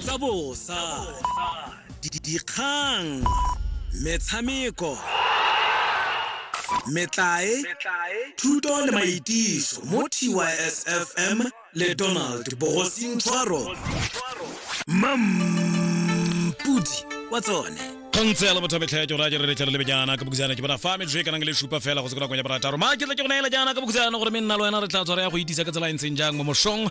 tsa bosa dikgang metshameko metlae thuto le maitiso mo tysfm le donald bogosing tshwaro mampudi wa tsone kgontse ya lebotha metlha ya ke raya ke re letlhelo lebe jaana ka bokisana ke bona fa metsho e kanang le supa fela go se ko nakong ya borataro ma ke tla ke go neela jaana ka bokisana gore me nna le wena re tla tshwara ya go itisa ka tsela e ntseng jang mo mosong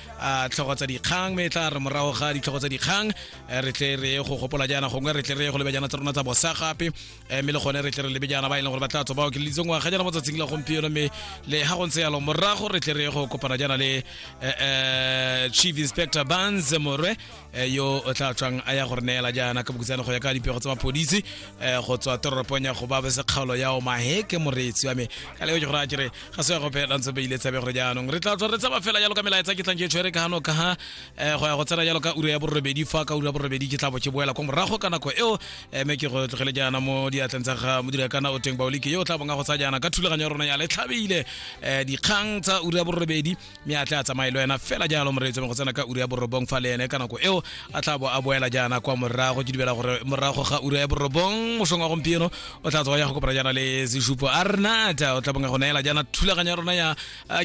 a tlhogo tsa dikgang me tla re morago ga ditlhogo tsa dikgang eh, re tle re go gopola jaana gongwe re tle re go lebe jaana tsa rona tsa bosa gape eh, mme le gone re tle re lebe jaana ba e leng gore ba tla tswa ba okeleditseng ngwaga jaana mo tsatsing la gompieno mme le ga go ntse yalo morago re tle re go kopana jaana le eh, eh, chief inspector bans morwe eh, yo o tla tswang a ya gore neela jaana ka bokutsane go ya ka dipego tsa mapodisi eh, go tswa toropong ya go ba bese kgaolo ya omahe ke moreetsi wa me ka leo ke gore a kere ga se ya go phela ntse beile tsebe gore jaanong re tla tswa re tsaba fela jalo ka melaetsa ke tlang ke tshwere ka gano ka ga eh, go ya go tsena jalo ka ura ya borobedi fa ka ura ya borobedi ke tla bo ke boela kwa morago ka nako eo eh, me ke go tlogele jaana mo diatleng tsa ga modira kana o teng baolike yo o tla bonga go tsaya jaana ka thulaganyo ya rona ya letlhabile eh, dikgang tsa ura ya borobedi mme a tla a tsamaye le wena fela jalo moreetso go tsena ka ura ya borobong fa le ene ka nako eo a tla bo a boela jaana kwa morago ke dibela gore morago ga ura ya borobong mosong wa gompieno o tla tswa ya go kopana jaana le sesupo a renata o tla bonga go neela jaana thulaganyo ya rona ya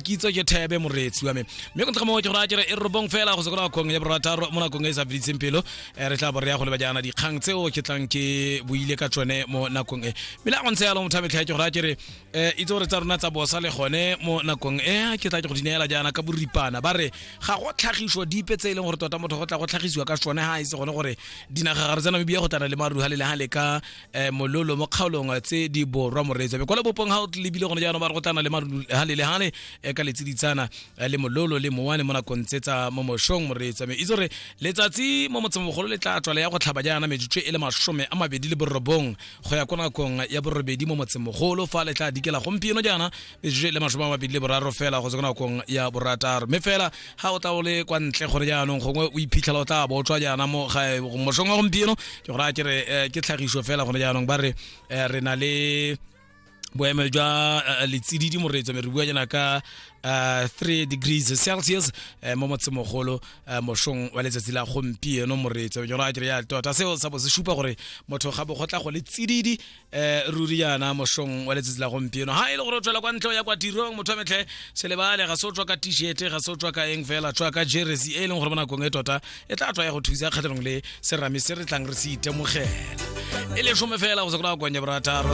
kitso ke thebe moreetsi wa me mme go ntse mo ke gore a kere e robong fela go sekola kgong ya borataro mo nakong e sa feditseng pelo re tla bo re ya go leba jaana dikgang tseo ke tlang ke boile ka tsone mo nakong e mme la go ntse yalo motho a metlha ke gore a kere eh itse gore tsa rona tsa bosa le gone mo nakong e ke tla ke go dinela jaana ka boripana ba re ga go tlhagiso dipe tse e leng gore tota motho go tla go tlhagisiwa ka sone ha e se gone gore dinagagare tsa namibia go tana le maruha le lehale ka eh, mololo mo kgaolong tse di borwa moreetsa be kwa lebopong ga o lebile gone jaanong ba re go tana le maruha le lehale eh, ka letsiditsana eh, le mololo le mowane mo nakong tse tsa mo moshong moreetsa me itse gore letsatsi mo motsemogolo le tla tswa le ya go tlhaba jaana metsotso e le masome a mabedi le borobong go ya ko nakong ya borobedi mo motsemogolo fa le tla dikela gompieno jaana metsotso le masome a mabedi le boraro fela go tswa ko nakong ya borataro mme fela ga o tla o le kwa ntle gore jaanong gongwe o iphitlhela o tla bo o tswa jaana mo ga- mosong wa gompieno ke gore a ke re eh, ke tlhagiso fela gone jaanong ba re eh, re na le boemelo jwa uh, letsididi moreetso me re bua jana ka uh, 3 degrees celsius uh, mo motsemogolo uh, mošong wa letsatsi la gompieno moreetso jona ke ya tota seo sa bo se supa gore motho ga bo gotla go le tsididi uh, ruri yana mošong wa letsatsi la gompieno ha e le gore o tswela kwa ntlo ya kwa tirong motho metlhe se lebale ga se o tswa ka t-shirt ga se o tswa ka eng fela tswa ka jersey e leng gore mo nakong e tota e tla tswa ya go thusa kgatlhanong le serame se re tlang re se itemogela e le some fela go se kona go kwanya borataro